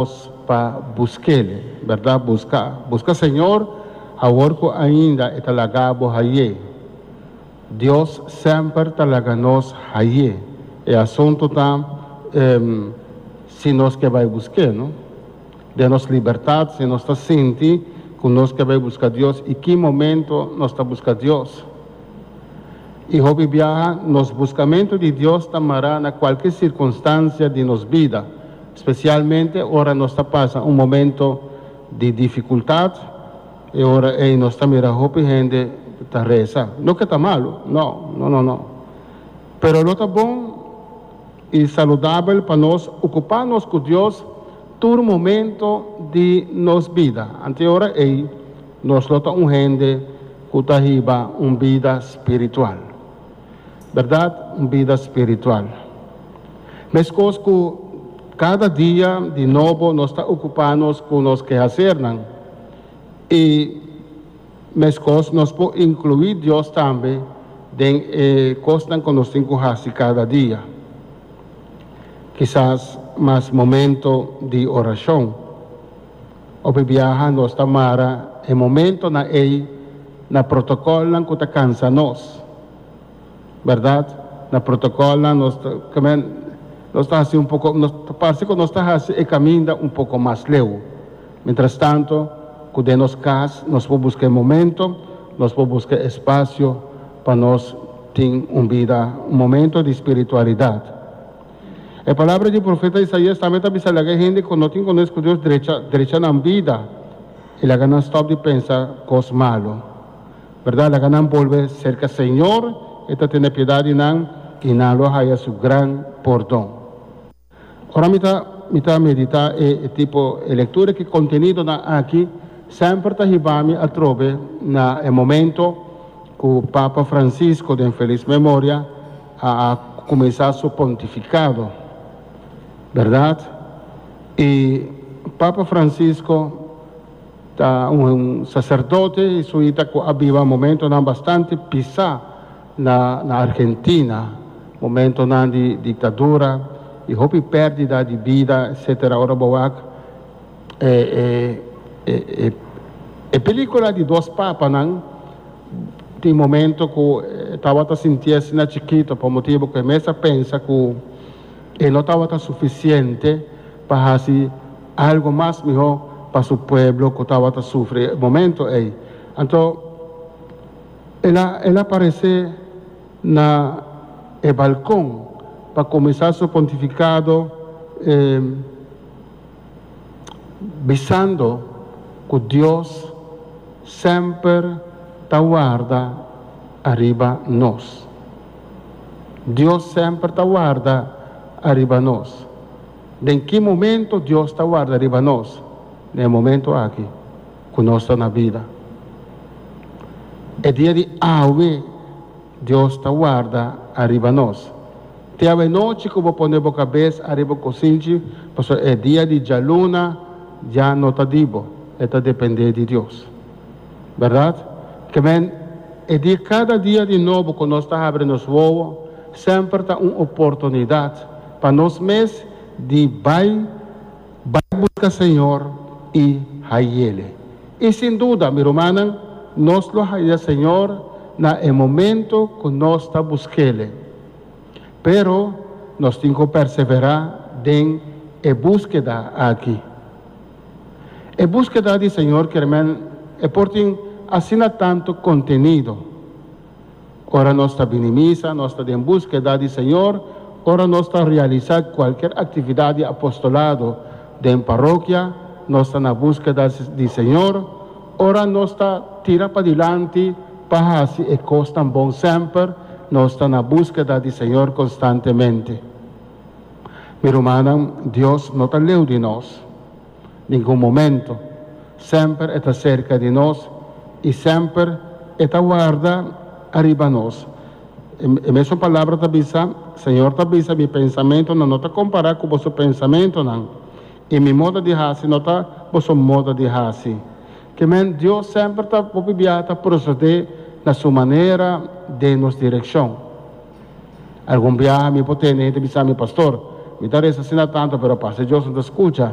Nos pa buskel, berdad? Busca, busca Señor awor cu ainda e ta laga bo haye. Dios semper ta laga nos haye e asunto ta em si nos ke bay busqué no. Den nos libertad si nos ta sinti cu nos ke bay busca Dios y ki momento nos ta busca Dios. Y hopi biaha nos buscamento di Dios ta mará na cualke circunstancia di nos bida. Spesialmente ora nos ta pasa un momento di difikultat, e ora ei nos ta mira hopi hende ta resa. No ke ta malu, no, no, no, no. Pero lo ta bon i saludabel pa nos okupá nos ku Dios tur momento di nos bida. Anto ora ei nos lo ta un hende ku ta hiba un bida spiritual. Bèrdat un bida spiritual. Meskos ku kada dia di nobo nos ta okupá nos ku nos kehasernan, i meskos nos por inkluí Dios tambe den e kosnan ku nos tin ku hasi kada dia. Kisas mas momento di orashon. Hopi biaha nos ta mara e momentonan ei na protocolnan cu ta cansa nos, berdad? Na protocolnan nos ta camen, nos ta haci un poco, nos ta parce cu nos ta haci e caminda un poco mas leu. Mientrastanto cu den nos cas nos por busca e momento, nos por busca e espacio pa nos tin un bida, un momento di spiritualidad. E palabra di profeta Isaias tambe ta bisa laga e hende ku no tin kones ku Dios drecha drecha nan bida i laga nan stòp di pensa kos malu. Bèrdat, laga nan bolbe serka Señor, e ta tene piedat di nan i nan lo haya su gran pordon. Ora mi ta mi ta meditá e tipo e lektura ku e kontenidonan aki, semper ta hiba mi atrobe na e momento ku Papa Francisco den felis memoria, a kumensá su pontifikado, bèrdat? I Papa Fransisko ta un saserdote jesuita ku a biba momentonan bastante pisá na na Argentina, momentonan di diktadura i hopi pèrdida di bida etsetera. Ora bo wak E pelicula di dos papanan tin momento cu e tabata sinti asina chikito pa motibo cu e mes a pensa cu e no tabata suficiente pa haci algo mas miho pa su pueblo cu tabata sufri e momento ey. Anto el a parece na e balcon pa cuminsa su pontificado. bisando ku Dios semper ta warda ariba nos. Dios semper ta warda ariba nos. Den ki momento Dios ta warda riba nos? Den e momento aki ku nos ta na bida. E dia di awe. Dios ta warda ariba nos. Te awe nochi ku bo pone bo kabes ariba un kosinchi, pasobra e dia di djaluna ya no ta di bo, e ta dependé di Dios. Bèrdat? Kèmen, e di kada dia di nobo ku nos ta habri nos wowo semper ta un oportunidat pa nos mes di bai. Bai buska Señor i hayele. I sin duda, mi rumannan, nos lo haya Señor na e momento ku nos ta busk'Ele. Pero nos tin ku perseverá den e buskeda aki. E buskeda di Señor, kiermen, e por tin asina tantu kontenido. Ora nos ta bini misa, nos ta den buskeda di Señor, ora nos ta realisá kualker aktividat di apostolado den parokia, nos ta na buskeda di Señor, ora nos ta tira padilanti pa hasi e kosnan bon semper, nos ta na buskeda di Señor konstantemente. Mi rumannan, Dios no ta leu di nos. ningun momento. Semper e ta serka di nos i semper e ta warda ariba nos. E mesun palabra ta bisa, Señor ta bisa, Mi pensamentonan no ta kompará ku boso pensamentonan, i Mi moda di hasi no ta boso moda di hasi. Ke men, Dios semper ta hopi biaha ta prosodé na su manera den nos direkshon. Algun biaha mi por tende hende bisami, Pastor, mi ta resa asina tantu, pero pas e Dios no ta skucha.